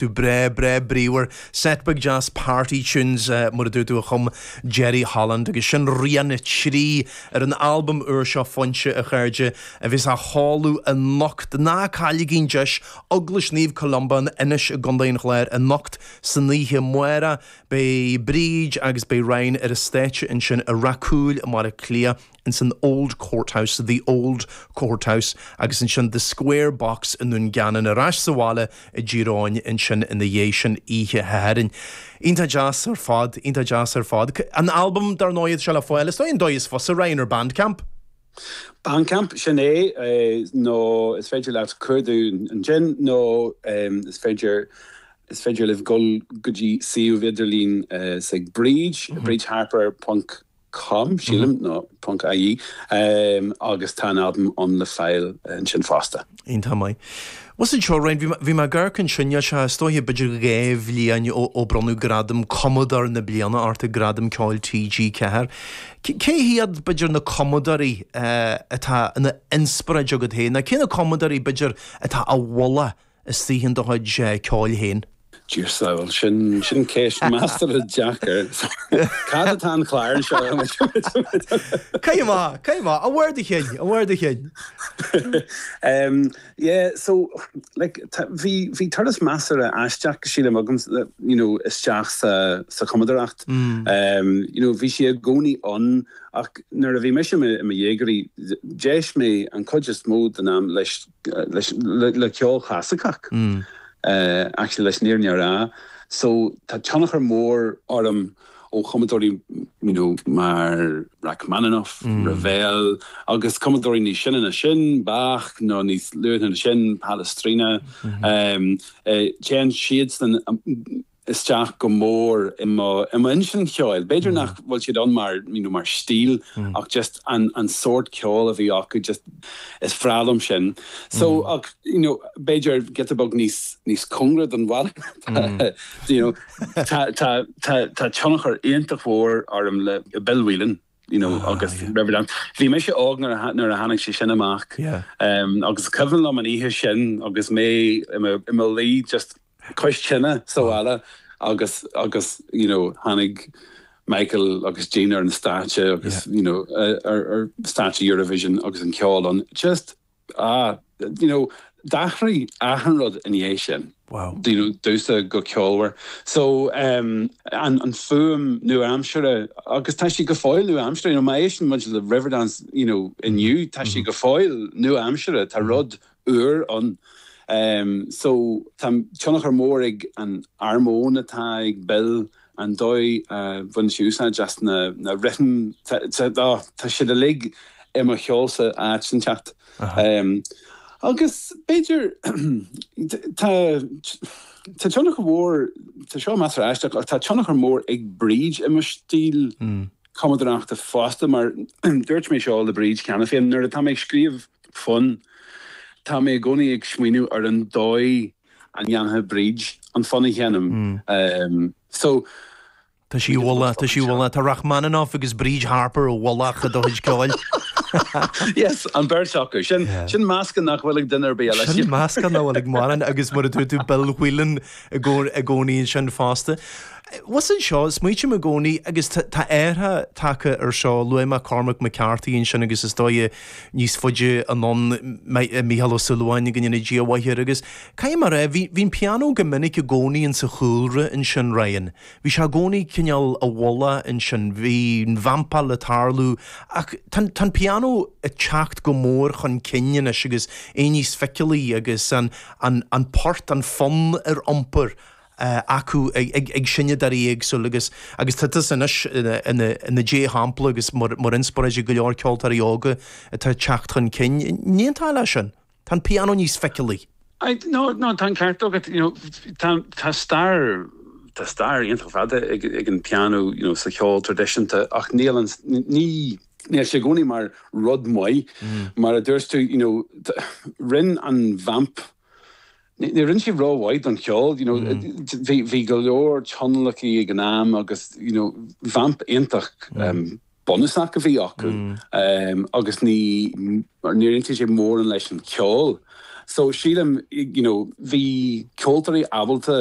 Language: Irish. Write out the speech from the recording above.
tú breá breá bríomhar. Set beag deas party tunes mar a dúirt tú a chum Jerry Holland agus sin rian a 3 ar an albam úr seo Foinse a chairde a bheas á sheoladh anocht. Ná cailligí an deis! Eaglais Naomh Columba in Inis i gContae an Chláir anocht san oíche amárach, beidh Bríd agus beidh Ryan ar an stáitse ansin i Rath Cúil i mBaile Átha Cliath. ins an Old Courthouse, The Old Courthouse, agus ansin The Square Box i nDún Geanainn, ar ais sa bhaile i dTír Eoghain ansin ina dhiaidh sin oíche Shathairn. Iontach deas ar fad, iontach deas ar fad. An albam, dar ndóigh, é seo le fáil, is dóigh, an dóigh is fusa, Ryan, ar Bandcamp? Bandcamp, sin é, nó is féidir leat cuardach ansin, nó is féidir, is féidir libh dul go dtí suíomh idirlín is ag Bríd, bridharper. com, sílim, nó ponc ie agus tá an albam ann le fáil ansin fosta. Iontach maith. Maise anseo Ryan, bhí mé ag amharc ansin níos luaithe b'fhéidir go dhá bhliain ó bronnadh gradam Cumadóir na Bliana ort ag Gradaim Ceoil TG4. Cé hiad b'fhéidir na cumadóirí atá ina n-inspioráid agat féin? Nó cé na cumadóirí b'fhéidir atá á mholadh I dtaobh do chuid ceoil féin. Dear saol, sin sin ceist measartha deacair. Cá fhad atá an clár anseo? Caith amach, caith amach, ó bharr do chinn, ó bharr do chinn. Yeah, so like tá bhí bhí turas measartha aisteach sílim agam you know isteach sa sa chumadóireacht. You know bhí sé i gcónaí ann ach nuair a bhí mise i mo dhéagóir d'éist mé an chuid is mó den am leis leis le ceol clasaiceach actually leis níor níor a so tá tionchar mór orm ó chumadóirí you know mar Rachmaninoff, Ravel agus cumadóirí níos sine ná sin Bach nó níos luaithe ná sin Palestrina téann siadsan isteach go mór i mo i mo intinn cheoil. B'fhéidir nach bhfuil siad ann mar you know mar stíl ach just an sórt ceol a bhí acu just is bhreá liom sin. So ach you know b'fhéidir giota beag níos níos cóngaraí don bhaile you know tá tá tá tá tionchar iontach mhór orm le Bill Whelan. you know agus Riverdance bhí mise óg nuair a nuair a tháinig sé sin amach agus cuimhin liom an oíche sin agus mé i mo luí just cois tine sa bhaile agus agus you know tháinig Michael agus Jean ar an stáitse agus you know ar stáitse Eurovision agus an ceol an just Ah, you know, d'athraigh achan rud ina dhiaidh sin. Wow. Do you know, damhsa go ceolmhar. So, um, an, an fhuaim nua-aimseartha, agus tá sí go fóill nua-aimseartha, you know, má éisteann muid le Riverdance, you know, inniu, tá sí go fóill nua-aimseartha, tá rud úr ann. Um, so, tá tionchar mór ag an armóin atá ag Bill An dóigh a bhain sé úsáid as na rithim, tá siad uilig i mo cheol sa áit inteacht. Agus b'fhéidir, tá tionchar mhór, tá seo measartha aisteach, ach tá tionchar mór ag Bríd i mo stíl cumadóireachta fosta, mar dúirt mé seo le Bríd cheana féin, nuair atá mé ag scríobh fonn, tá mé i gcónaí ag smaoineamh ar an dóigh an ndéanfadh Bríd an fonn a sheinm? So. Tá sí i bhfolach, tá sí i bhfolach. Tá Rachmaninoff agus Bríd Harper i bhfolach i do chuid ceoil. Yes, an bheirt acu. Sin, sin meascán nach bhfuil ag duine ar bith eile. Sin meascán nach bhfuil ag mórán agus mar a dúirt tú Bill Whelan i gcónaí, i gcónaí ansin fosta. Bhuel sin seo, smaoiním i gcónaí agus tá, tá athrú tagtha ar seo, luaigh mé Cormac McCarthy ansin agus is dóigh, níos faide anonn, Micheál Ó Súilleabháin go ndéana Dia a mhaith air agus caithfidh mé a rá, bhí an pianó go minic i gcónaí insa chúlra ansin, Ryan. Bhí sé i gcónaí cineál i bhfolach ansin, bhí an vamp ag tarlú ach tá an, tá an pianó ag teacht go mór chun cinn anois agus é níos feiceálaí agus an, an, an port, an fonn ar iompar. acu ag seinnteoirí éagsúla agus tá tusa anois i do dhea-shampla agus mar inspioráid ag go leor ceoltóirí óga atá ag teacht chun cinn. An aontaíonn tú leis sin. Tá an pianó níos feiceálaí. Nó nó tá an ceart agat you know tá stair tá stair iontach fada ag an pianó you know sa cheol traidisiúnta ach níl an ní níl sé i gcónaí mar rud maith mar a dúirt tú you know rinne an vamp Ní rinne sí ró-mhaith don cheol, you know, bhí go leor tionlacaithe ag an am agus, you know, vamp iontach bunúsach a bhí acu agus níor aontaigh sé mórán leis an cheol. So sílim, you know, bhí ceoltóirí ábalta